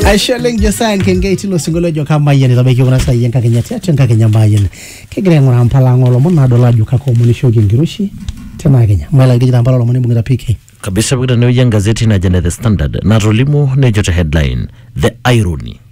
aisho oleng josaya nkengei tilo sinkolio ojo kamayian itabaiki kuna saai enkakenya tiatua enkakenya mayian kigira aing'uraa mpala ang olomon nadol ajo kakoomonishoki enkiroshi tena kenya maila nkijita mpala olomon ibung'ita pk kabisa pokira tenewueji engazeti najo ene the standard natolimu nejo te headline the irony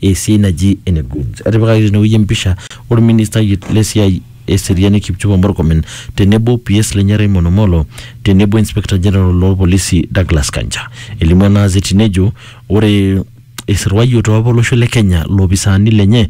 esiai naji ene Goods. Etipikaki tenewueji empisha olministai le siai e seriani Kipchumba Murkomen tenebo PS lenye Raymond Omolo tenebo Inspector General loo lpolisi Douglas Kanja. Elimu ena azeti nejo ore eisirwayioto apa olosho le Kenya loopisaani lenye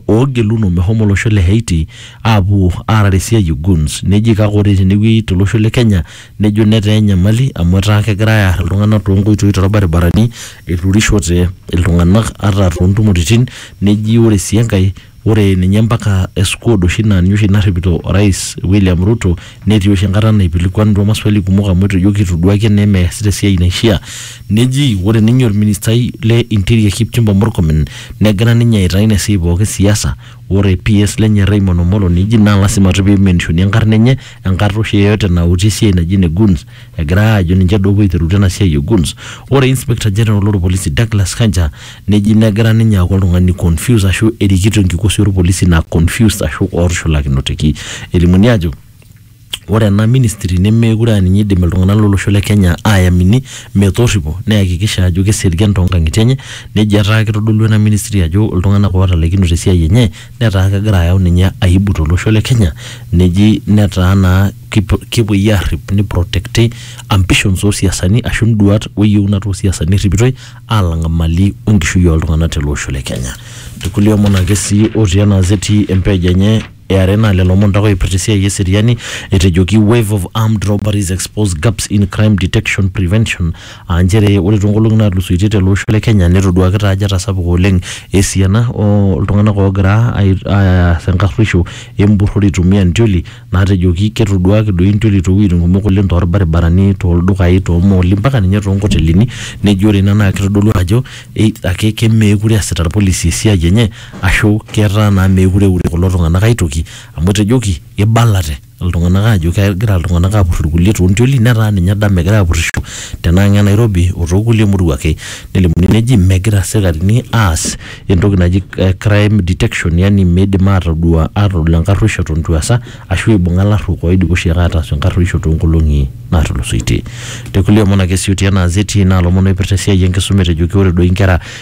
oogeluno meshomo olosho le Haiti aapuo aarare esiai e Goons neji kake ore tenewueji to losho le Kenya nejo netaa enyamali amu etaa kegirai aar iltung'anak toonkoitoi torbaribarani eturishote iltung'anak ata toontumoritin neji ore sii enkae ore ninye mpaka squad oshi naa ninye oshi narripito orais William Ruto netii oshi enkata naipilikuanutua maswali kumok amu etejo kitoduaki enaa emeesita esiai naishia neji ore ninye orministai le interior Kipchumba Murkomen negira ninye aitaa ina siai pooki siasa Ore PS lenye Raymond Omolo neji naa lasima toi peimenishoni enkarna enye enkata oshi yeyote nauti esiai naji ene Guns egira aajo ninche duo opuo aiterutua ena siai e Guns. Ore Inspector General loo lpolisi Douglas Kanja neji negira ninye aaku oltung'ani confused ashu erikito enkikosi oo lpolisi naa confused ashu ootushulakinoteki. Elimuni aajo. ore ena ministry nemeekure aa ninye eidim iltung'anak lolosho le Kenya aayamini metorripo neyakikisha ajo keserian toonkang'itie enye nejo etaa kitodolua ena ministry ajo iltung'anak ootalaikinote te siai enye netaa kegira ayau ninye aibu to losho le Kenya neji netaa naa kepuoi aarrip ni protect i ambitions oo siasani ashu induat o yieunat oo siasani erripitoi aalang imali o nkishui oo ltung'anak tele osho le Kenya. Irkulie omon ake sii otii ena gazeti e page enye Eare naa lelo omon taa oipirta esiai eseriani etejoki wave of armed robberies expose gaps in crime detection prevention aa nchere ore toonkolong'i naatulusoitie tele osho le Kenya netoduaaki taa ajo etasapuka oleng esiana oltung'anak oogira aas enkarruisho empurrore eitumia intioli naatejoki ketoduaaki doi intioli toowueitin kumok oleng torbaribarani, toldukai, toomooli mpaka ninye toonkotelini nejo ore ina naa kitodolu ajo either ake meekure eesita irpolisi esiai enye Ashu ketaa naa meekure eure kulo tung'ana ae toki amu etejoki eibalate iltung'ana aajo kegira iltung'ana aapur ilkulie too ntioli netaa ninye edama egira apurisho tena ang' e Nairobi o too kulie murua ake. Nelimuni neji megira isikarini aas entoki naji crime detection yaani meidim aatodua aatodol enkaruoisho eton eitu easa ashu eibung'a ilarruok oidipa oshiake ataas enkaruoisho too nkolong'i naatulusoitie. Te kulie omon ake sii otii ena azeti naa ilomon oipirta esiai e nkisuma etejoki ore doi nkera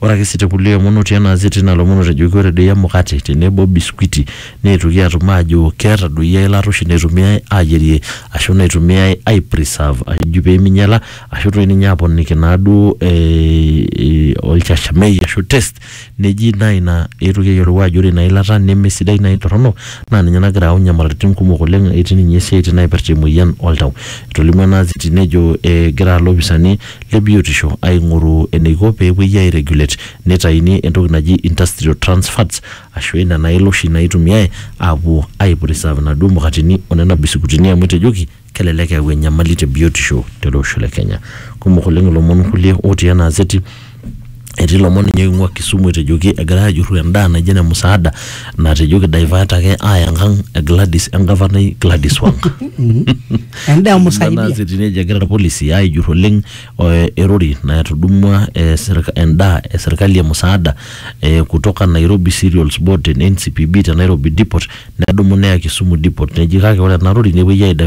Ore ake sii te kulie omon otii ena azeti ina lomon otejoki ore doi emukate tenebo o biskuiti neetuoki aatum aajo ketadoyie eilata oshi naitumiyai aayierie aashu naitumiyai ai preserve ajo pee meinyala aashu toi ninye aaponiki naaduo olchashamei aashu taste neji naa ina eetuoki ayiolou aajo ore ina ilata nemesidai naa eitorrono naa ninye nagira ayau inyamalaritin kumok oleng etii ninye isiatin naipirta emoyian oltau. Etolimuo ena azeti nejo egira ilopisaani le biotisho aing'oru eneiko pee epuoi airegulate neitaini entoki naji industrial trans fats ashu ina naila oshi naitumiae aapuo aipreserve inaduo mukateni o nena bisikutini amu etejoki kelelek eyau enyamali te biotisho tele osho le Kenya. Kumok oleng ilomon kulie otii ena azeti. Etii lomon ninye oing'ua Kisumu etejoki egirai ajurru endaa naijo ene musaada natejo kidivert ake aaya enkang e Gladys engavanai Gladys Wang. Endaa musaidia. Nana sitini ejo egira irpolisi aijurru oleng eh, erori natudumua eh, serika- endaa e serkali e musaada eh, kutoka Nairobi Cereals Board te NCPB te Nairobi Depot nedumu neya Kisumu Depot neji kake ore ena rori nepuoi aidivert